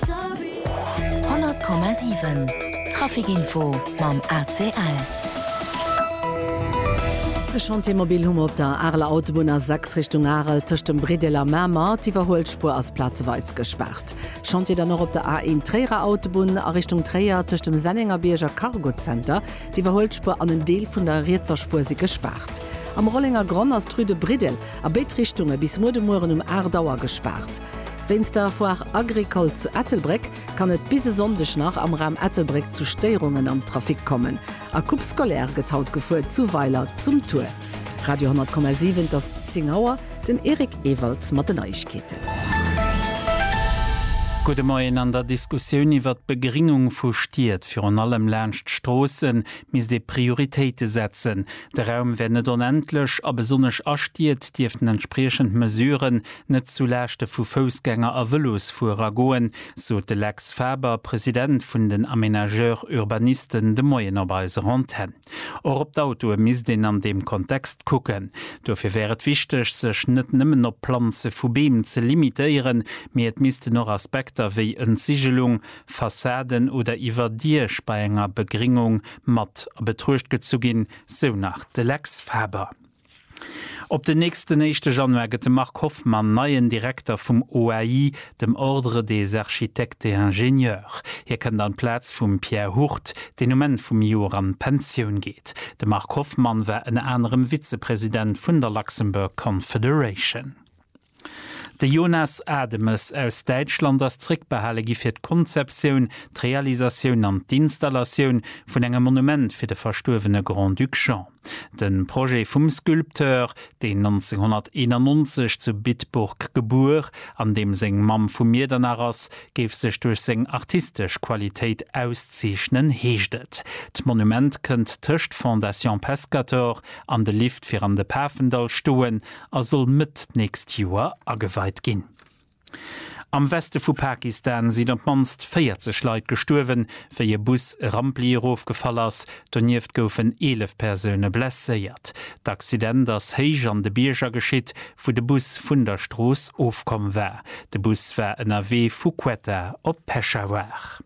100,7 Trafic Info mam ACL. E Chantier mobil hu mer op der Areler Autobunn, A6 Richtung Arel, tëscht dem Briddel a Mamer. D'Iwwerhuelspuer ass plazeweis gespaart. Chantier dann och op der A1 Tréierer Autobunn a Richtung Tréier, tëscht dem Sennengerbierg a Cargo Center. D'Iwwerhuelspuer an en Deel vun der rietser Spuer si gespaart. Am Rollengergronn ass d'Rue de Briddel a béid Richtunge bis muer de Mueren um 8 Auer gespaart. Wéinst der Foire Agricole zu Ettelbréck kann et bis e Sonndeg nach am Raum Ettelbréck zu Stéierungen am Trafic kommen. A Coupe scolaire gëtt haut gefuer zu Weiler zum Tour. Radio 10,7 Et ass 10 Auer, den Eric Ewald mat den Neiegkeeten. Gudde Moien, An der Diskussioun iwwert d'Begringung vu Stied, virun allem laanscht d'Stroossen, misst ee Prioritéite setzen. De Raum wär net onendlech a besonnesch a Stied dierften entspriechend Mesuren net zu Laaschte vu Foussgänger a Vëlosfuerer goen, sot de Lex Faber, President vun den Aménageurs urbanisten, de Moien op eiser Antenn. Och op d'Autoe misst een an deem Kontext kucken. Dofir wär et wichteg, sech net nëmmen op d'Planze vu Beem ze limitéieren, mee et missten och Aspekter wéi Entsiggelung, Fassaden oder Iwwerdiech bei enger Begréngung mat a Betruecht gezu ginn, sou nach de Lex Faber. Op den nächsten éischte Januar gëtt de Marc Hoffmann neien Direkter vum OAI, dem Ordre des Architectes et Ingénieurs. Hie kënnt an d'Plaz vum Pierre Hurt, deen um Enn vum Joer an d'Pensioun geet. De Marc Hoffmann war ënner anerem Vizepresident vun der Luxembourg Confederation. De Jonas Ademes aus Däitschland ass zréckbehale gi fir d'Konzeptioun, d'Realisatioun an d'Installatioun vun engem Monument fir de verstuerwene Grand-Duc Jean. De Projet vum Sculpteur, deen 1991 zu Bitburg gebuer an deem seng Mamm vu Miedernach ass, géif sech duerch seng artistesch Qualitéit auszeechnen, heescht et. D'Monument kënnt tëscht Fondation Pescator an de Lift fir an de Pafendall stoen. a soll Mëtt d'nächst Joer ageweit ginn. Am Weste vu Pakistan sinn op d'mannst 40 Leit gestuerwen, wéi e Bus e Rampli erofgefall ass. Donieft goufen 11 Persoune blesséiert. D'Accident ass héich an de Bierger geschitt, wou de Bus vun der Strooss ofkomm war. De Bus war ënnerwee vu Quetta op Peshawar.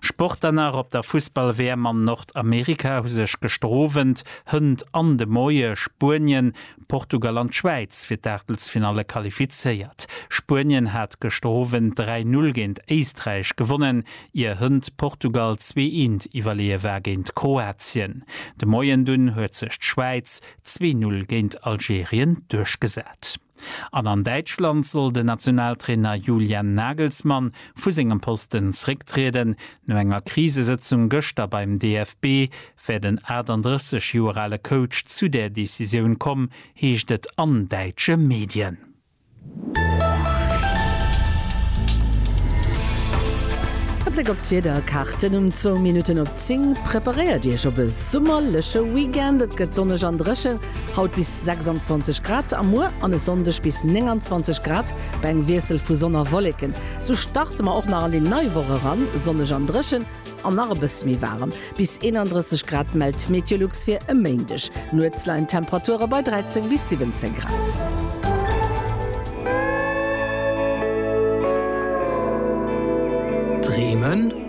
Sport dann nach, Op der Fussball-WM an Nordamerika hu sech gestrowent Hënt an de Moie Spuenien, Portugal an d'Schwäiz fir d'Aachtelsfinalle qualifizéiert. Spuenien hat gestrowent 3, 0 géint Éisträich gewonnen, ier Hënt Portugal zwee eent iwwerleeë war géint Kroatien. De Moien dunn huet sech d'Schwäiz zwee, 0 géint Algerien duerchgesat. An an Däitschland soll den Nationaltrainer Julian Nagelsmann vu sengem Posten zrécktrieden. No enger Krisesëtzung gëschter beim DFB wär den 38 Joer ale Coach zu där Decisioun komm, heescht et an däitsche Medien. E Bléck op d'Wiederkaarten um zwou Minutten op 10. Preparéiert Iech op e summerleche Weekend, et gëtt sonneg an dréchen. Haut bis 26 Grad a muer an e Sonndeg bis 29 Grad bei engem Wiessel vu Sonn a Wolleken. Sou starte mer och nach an déi nei Woch eran, sonneg an dréchen an nach e bësse méi waarem, bis 31 Grad mellt d'Meteolux fir e Méindeg. Nuets leien d'Temperature bei 13 bis 17 Grad. Dreemen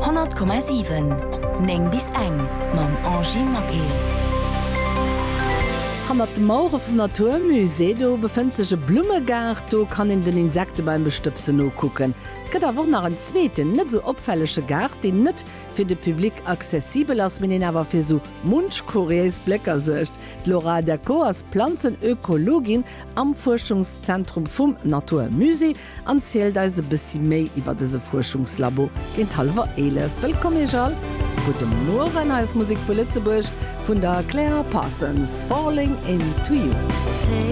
100,7 9 bis eng mam Angie Maquet. Hannert de Mauere vum Natur Musée do befënnt sech e Blummegaart. Do kann een den Insekte beim Bestëbsen nokucken. Et gëtt awer och nach en zweeten, net esou opfällege Gaart, deen net fir de Public accessibel ass, mee deen awer fir esou munch kuriéis Blécker suergt. D'Laura Decaux ass Planzenökologin am Fuerschungszentrum vum Natur Musée an zielt eis e bëssi méi iwwer dëse Fuerschungslabo géint hallwer 11. Wëllkomm Iech all! Gudde Mueren, hei ass Musek vu Lëtzebuerg vun der Claire Parsons, Falling into you.